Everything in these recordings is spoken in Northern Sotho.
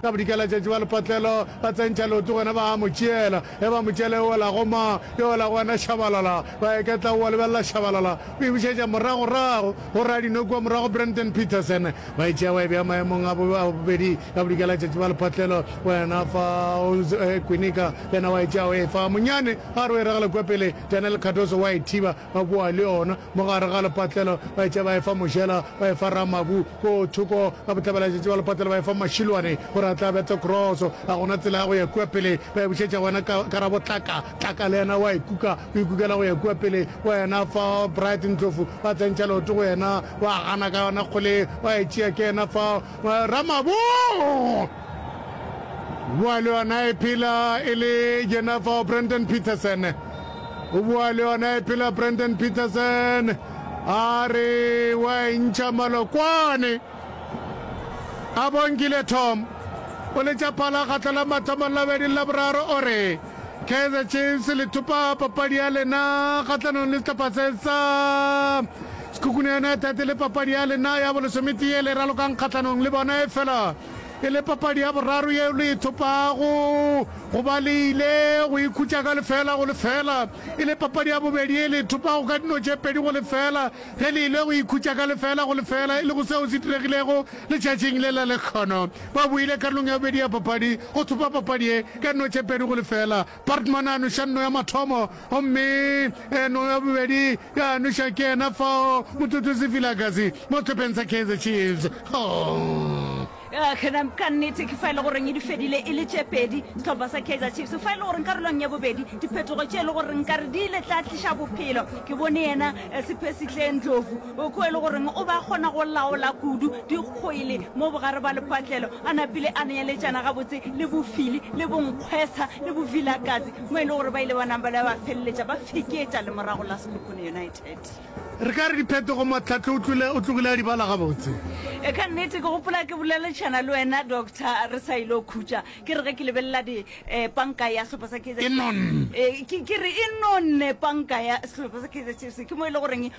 Ka bodika letšatši ba lepatlelo ba tsentšha leoto gona ba a mo tšeela. Ge ba mo tšeela e wela go ma? E wela go wena Shabalala. Ba eketla o a lebelela Shabalala o e bušetša moragorago go Radinwe kua morago Brandon Petersen ba e tšea ba e bea maemong a bobedi. Ka bodika letšatši ba lepatlelo wena fa o e kwinika le yena wa e tšea o e fa Monyane a re o e ragela kua pele Daniel Cardoso wa e thiba ba boa le yona. Mo gare ga lepatlelo ba etše ba efa Mojela, ba efa Ramabu. Ko thoko ga bohlabelaletšatši ba lepatlelo ba efa Mashilwane gore a tle a bete kroso. Ga go na tsela ya go ya kua pele, ba e bušetša go yena Karabo Tlaka. Tlaka le yena o a e kuka, o ikukela go ya kua pele. Wa yena fa Bright Ndlovu, ba tsentšha leoto go yena, o a gana ka yona kgole, wa e tšea ke yena fa Ramabu. Bua le yona e phela e le yena fa Brandon Petersen. O bua le yona e phela Brandon Peterson a re wa e ntšha malokwane. A bongile Tom o letša phala kgatlo la mathomo la bedi la boraro o re Kaizer Chiefs le thupa papadi ya lena kgahlanong le sehlopha se sa Sekhukhune United le papadi ya lena ya bolesometee le ralokang kgahlanong le bona e fela E le papadi ya boraro yeo le e thopago go ba le ile go ikhutša ka lefeela go lefeela. E le papadi ya bobedi ye le e thopago ka dino tše pedi go lefeela ge le ile go ikhutša ka lefeela go lefeela e lego seo se diregilego letšatšing le la lekgono. Ba boile karolong ya bobedi ya papadi go thopa papadi ye ka dino tše pedi go lefeela. Portman a noša nno ya mathomo gomme eno ya bobedi ya noša ke yena fao mothutusi Vilakazi mo sehlopeng sa Kaizer Chiefs. Oh. Kgenam ka nnete ke fa e le goreng e di fedile e le tše pedi sehlopha sa Kaizer Chiefs fa e le goreng karolong ya bobedi diphetogo tše e le goreng ka re di ile tla tliša bophelo ke bone yena eh, sephesitleng dlovu O kwe e le goreng o ba kgona go laola kudu dikgwele mo bogare bwa lepatlelo, a napile a neeletšana gabotse le bofili le bonkgwesha le bovilakazi mo e le gore ba ile ba napa le ba feleletša ba feketša lemorago la Sekhukhune United. Re ka re diphetogo Matlhatle o tlole o tlogile a di bala gabotse. E ka nnete ke gopola ke boleletšana le wena doctor re sa ile khutša ke re ge ke lebelela di eh, panka ya sehlopha sa Kaizer E nonne. Eh, ke ke re e nonne panka ya sehlopha sa Kaizer Chiefs ke mo e le goreng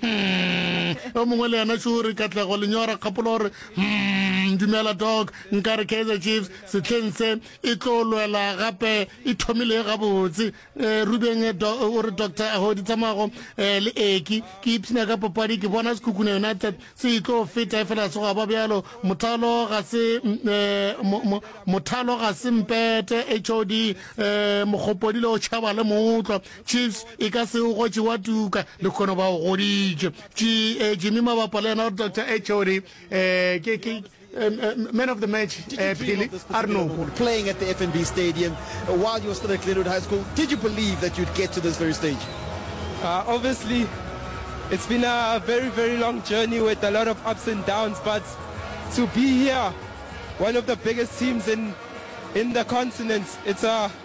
Hmm, o mongwe le yena šore katlego lenyora kgapolo gore hmm, dumela dog nka re kaizer chiefs setlheng se e tlo lwela gape e thomile gabotse um rubeng eh, o re doctor agodi tsamago um eh, le eki ke ipshina ka papadi ke bona sekhukhune united se e tlo feta e fela segoa ba bjalo mothalo ga se um mothalo ga se mpete hod um mokgopodile o tšhaba le moutlwa Chiefs e ka se o gotše wa tuka le khono ba o goditše eh, jimmy mabapa le yena gore dr hod um eh, ke eh, man of the match phele a re noko playing at the fnb stadium uh, while you were still at glenwood high school did you believe that you'd get to this very stage uh, obviously it's been a very very long journey with a lot of ups and downs but to be here one of the biggest teams in in the continent it's a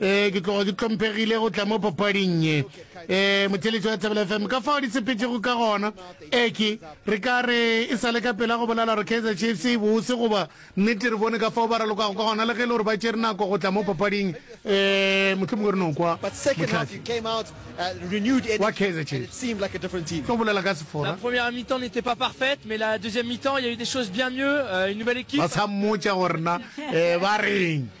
ee ke tloga ke tlhomphegile go tla mo papading ye ee motheletši wa thabela fm ka fao di sepetšego ka gona eke re ka re e sa le ka pela go bolela gore kaizer chiefs e bose goba nnete re bone ka fao ba ralokago ka gona le ge e le gore ba tšere nako go tla mo papading um mohlomong re no kwa motlhafi wa kaizer chiefs tlo bolela ka sefora ba sa mmotša gorena um ba reng